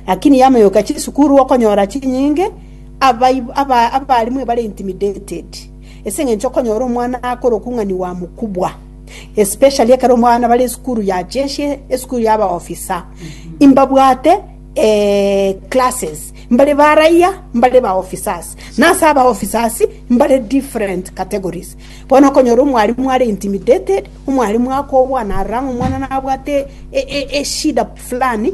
Lakini yamoyoka chisukuru okonyora chinyinge abaib- aba- abalimu ebare intimidated ase eng'encho okonyora omwana akora okung'aniwa mokubwa especially ekero omwana bare esukuru ya jeshi esukuru ya abaofisa imbabwate eh, classes mbare baraia mbare baofficers nase abaofficers mbare different categories bono okonyora omwalimu are intimidated omwalimu akobwana arang'a omwana nabwate e- e- eshida fulani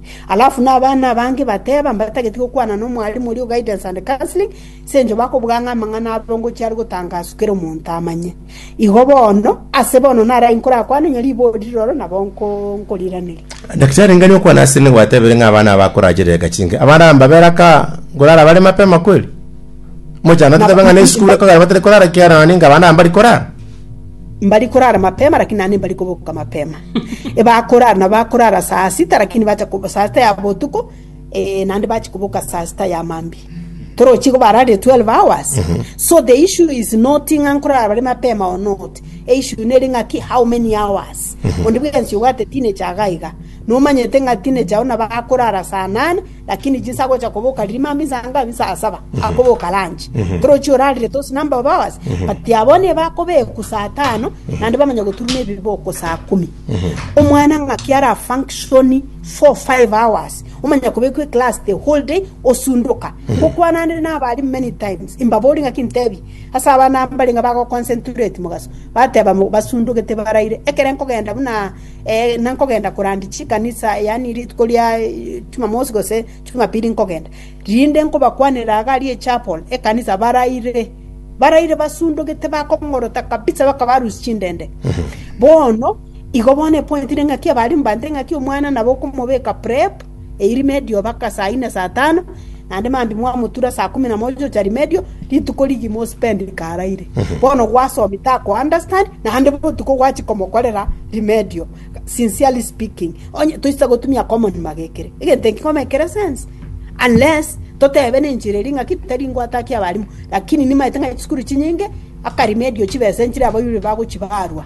Alafu nabana abange bateba mbatageti gokwana nomwarimu oria o Guidance and Counseling, sencho bakobuga ng'a amang'ana abarongochi are gotangaswa kera omonto amanye. Igo bono, ase bono narayi nkorakwane onye riboori riroro nabo nko nkoriraneria. Daktari ngani okwana ase nigwatebire ng'a abana aba akorachera eka chinke abana mbabere aka nkorara bare mapema kweli mochando totebe ng'a ne esukuru ekogera batari korara kiara naende inga abana aba mbari korara Mbari korara mapema lakini naende mbari koboka mapema. Bakorara na bakorara saa sita, lakini bacha ko- saa sita ya botuko eh, naende bachi koboka saa sita ya mambia torochi igo bararire 12 hours so the issue is not ng'a nkorara bare mapema or not e issue nere ng'a ki how many hours onde bwensi obwate teenager iga iga nomanyete ng'a teenager ona bakorara saa nane Lakini jinsa agocha koboka riria mambia inse anga abisa saa saba, akoboka ranchi. Torochi orarire tosi na mbao baoase, but abwo nigo akobeku saa tano, naende bamanye goturuna ebiboko saa kumi. Omwana ng'aki ara function four, five hours, omanya kobekwa eclass the whole day, osundoka. Ngokwananire nabari many times, imbabori ng'aki ntebi, ase abana mbarenge bagoconcentrate mogaso, bateba mo- basundogete baraire, ekere nkogenda buna na nkogenda korandia chikanisa, yaani rituko ria Chumamosi gose Chumapili nkogenda, rinde nkobakwanera iga aria echapel, ekanisa baraire, baraire basundugete bakong'orota kabisa bakabarusia chindende. Bono, igo bono epointire ng'aki abare mbante ng'aki omwana nabo okomobeka prep, Eirimedio mpaka saa inne saa tano, naende mambia mwamotura saa kumi na moja gocha rimedio, rituko rigima ospend karaire. Bono gwasomi tako understand, naende botuko gwachi komokorera rimedio. Sincerely speaking, onye toisa gotumia common magekere. Egento eki komekere sense. Unless totebe nenchera eria ng'aki tari ngwate haki y'abarimu, lakini nimaete ng'a chisukuru chinyinge mpaka rimedio chibesa enchera abaibori bagochi barwa.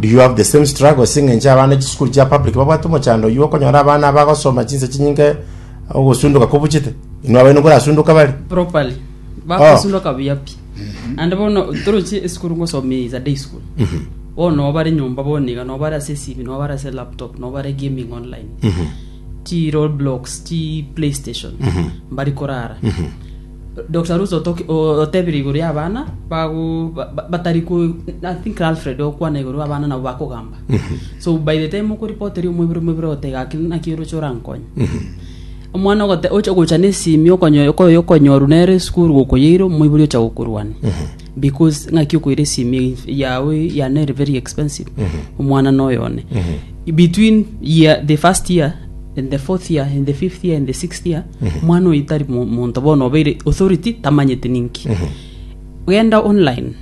Do you have the same struggle ase eng'encho abana chisukuru chia public babwate omochando oyio okonyora abana abagosoma chinsa chinyinge ogosunduka kobuchete inwe abaino nkorasunduka bare properly bakosundoka buya pi ande bono toroche esukuru ngosoma is a day school bono nobare nyomba bono iga nobare ase esimi nobare ase laptop nobare gaming online chi road blocks chi playstation mbari korara Doctor Ruth otoki- o- otebire igoro y'abana bago ba- ba- batari ko I think Alfred okwana igoro abana nabo bakogamba so by the time okoripoteria omobere omobere ogote gaki naki oroche orankonye omwana ogote oche gocha na esimi okonyo okoyo okonyoru nere esukuru gokoyeire omoibori ocha gokorwania because ng'aki okoira esimi yago ya nere very expensive omwana noyo one between year the first year and the fourth year and the fifth year and the sixth year omwana oyo tari mo- monto bono obeire authority tamanyete ninki genda online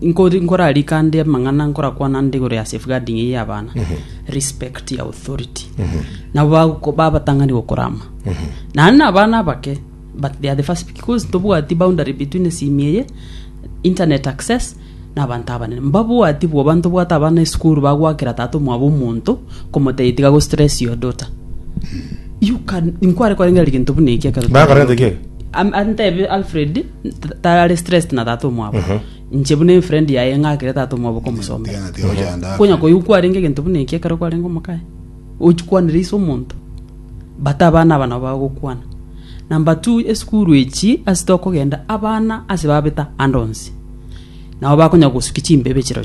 nkori- nkorarika ande amang'ana nkorakwana ande igoro ya safeguarding eye y'abana respect your authority nabo bagoko- babatang'ani gokorama naende na abana abake but they are the first because tobwati boundary between esimi eye internet access nabanto abanene. Mbabwati bwoba ntobwate abana esukuru bagoakera tata omwabo omonto, komotebi tiga go stress your daughter. You can, inkware korengera egento buna eki ekero Bakorente ki? Am- antebe alfred t- tare stressed na tata omwabo nche buna enfriend yaye ng'akere tata omwabo komosoma Tiga na tiga gochanda. konya koyokwarenge egento buna eki ekero kwarenge omokaye ochikwanire ise omonto Bato abana aba nabo bagokwana, na mbatu esukuru echi ase tokogenda abana ase babeta ande onsi. Nabo bakonya gosukia chimbebe chirochio.